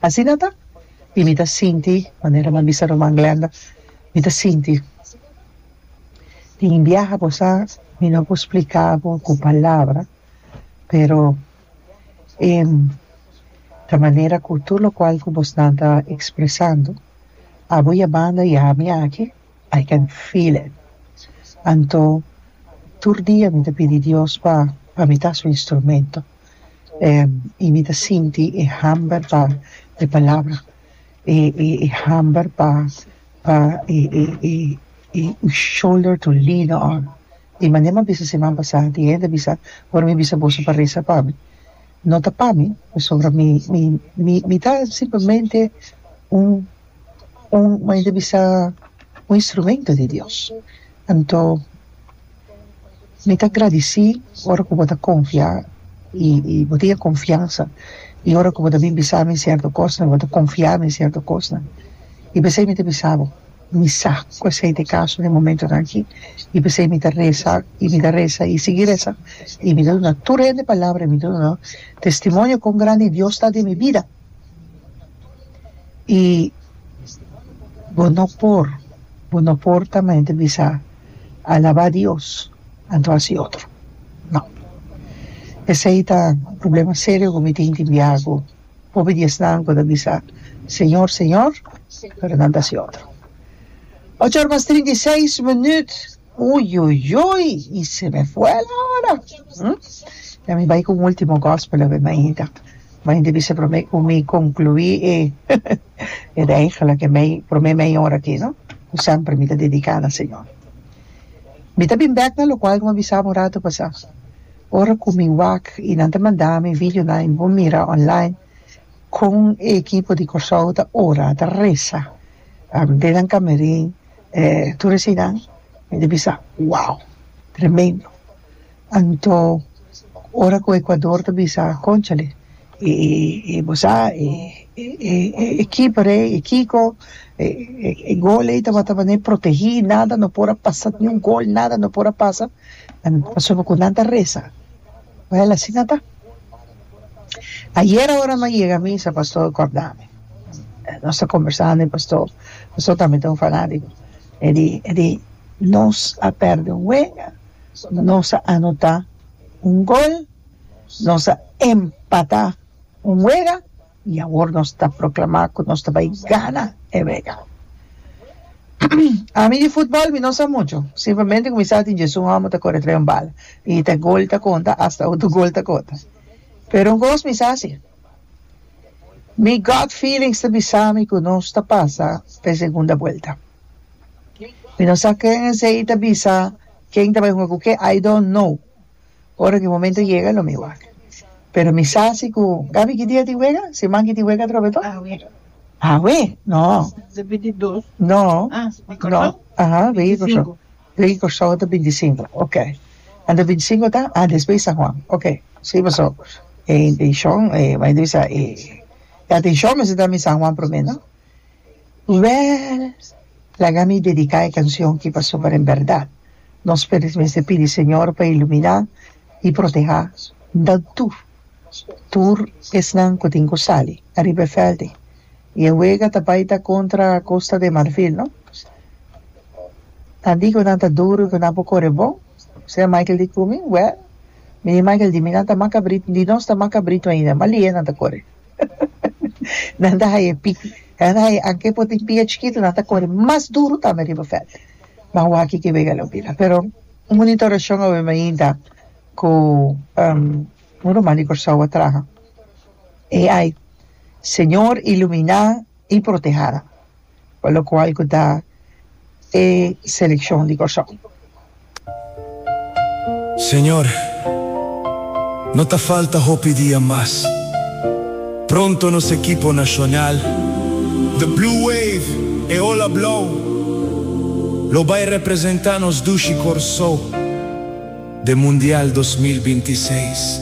Asina ta y mi ta sinti, manera mi a bisa Ruman Glenda, mi ta sinti. Tin biaha cosa mi no por splica bo cu palabra, pero e ta manera cu tur locual cu bosnan ta expresando, abo ya banda y ami aki, I can feel it. Anto tur dia mi ta pidi Dios pa mi ta su instrumento. y mi ta sinti e hamber pa e palabra e e e hamber pa pa e e e e e shoulder to lean on di manera mi bisa siman pasa di e hende a bisa ora mi bisa boso pa resa pa mi no ta pa mi pasobra mi mi mi ta simplemente un un mei ta bisa un instrumento di Dios anto mi ta gradeci ora cu bo ta confia y y bo tin e confiansa y ora cu bo ta bini bisa mi cierto cosnan bo ta confia mi cierto cosnan y p'esey mi ta bisa bo mi sa cu esey ta e caso den e momentonan aki y p'esey mi ta reza y mi ta reza y sigi reza y mi ta duna tur hende palabra y mi ta duna testimonio con grandi Dios ta den mi bida. i bo no por bo no por ta mi ta bisa alaba dios anto hasi otro no esei ta un problema serio ku mi tin tin biaku hopi di esnan ku ta bisa señor señor pero nan ta hasi otro ocho ora mas trinta i seis minüt Uiuiui y se me fuel ahora hm ya mi bay cu un ultimo gospel awe mainta mainta bisa prome cu mi conclui e e reigel aki mei prome meia ora aki no cu semper mi ta dedica na señor mi ta bin bek na locual como a bisami un rato pasa ora cu mi wak y nan ta mandami videonan y mi por mira online con e ekipo di Kòrsou ta ora ta resa den nan camerin e tur e sinan mi ta bisa wow tremendo anto ora cu Ecuador ta bisa conchale y y bo sa e e ekipo rei e kiko e e gol ei tabata baña protegi nada no por a pasa ni un gol nada no por a pasa pasobra cu nan ta resa well asina ta. Ayera ora lo a yega misa pastor a cordame nos ta combersando y pastor pastor tambe ta un fanatico e di e di nos a perde un wenga nos a anota un gol nos a empata un wega I awor nos ta proklamá ku nos ta bai gana e wega. Ami di futbòl mi no sa muchu. Simplemente kuminsá tin djesun hòmber ta kore atrás un bal i ta gol ta konta asta utru gol ta konta. Pero un kos mi sa si, mi gut feelings ta bisa mi ku nos ta pasa pa e segunda buelta. Mi no sa ken esei ta bisa, ken ta bai hunga ku ke, I don't know. Ora cu e momento yega lo mi wak. Pero mi sa si cu Gaby kiti a tin wega, si Manky tin wega atrobe to? Awe. No. No. No. Aha, wega di Corsou. Wega di Corsou ta binti cinco. Ok. Anto binti cinco ta? Ah, despues di San Juan. Ok. Si, paso e intencion, e, m'a intenta bisa e, e atencion mester ta mi San Juan prome, no? Luer, laga mi dedica e cancion ki pasobra ta den berdad. Nos p'e mester pidi Señor pa ilumina y proteha nan tur, tur esnan cu tin cu sali ariba e veldi. Y e wega ta bay ta contra Costa de Marfil, no? Nan di cu nan ta duru y cu nan por core bon, sea Michael di cu mi, Well, mi di Michael di mi nan ta macabrit, di nos ta macabrit ainda, ma lie nan ta core. Nan ta haye pi nan ta haye anke por tin pia chikitu nan ta kore mas duru tambe riba veld ma awor aki ke wega lo bira pero un monitorashon awe mi a yinta ku un ruman di Kòrsou a traha e ai Señor ilumina i protehanan. pa lokual ku ta e selekshon di Kòrsou. Señor, no ta falta hopi dia mas. Pronto nos ekipo nashonal, The Blue Wave, e Ola Blou, lo bai representá nos dushi Kòrsou den Mundial dos mil binti seis.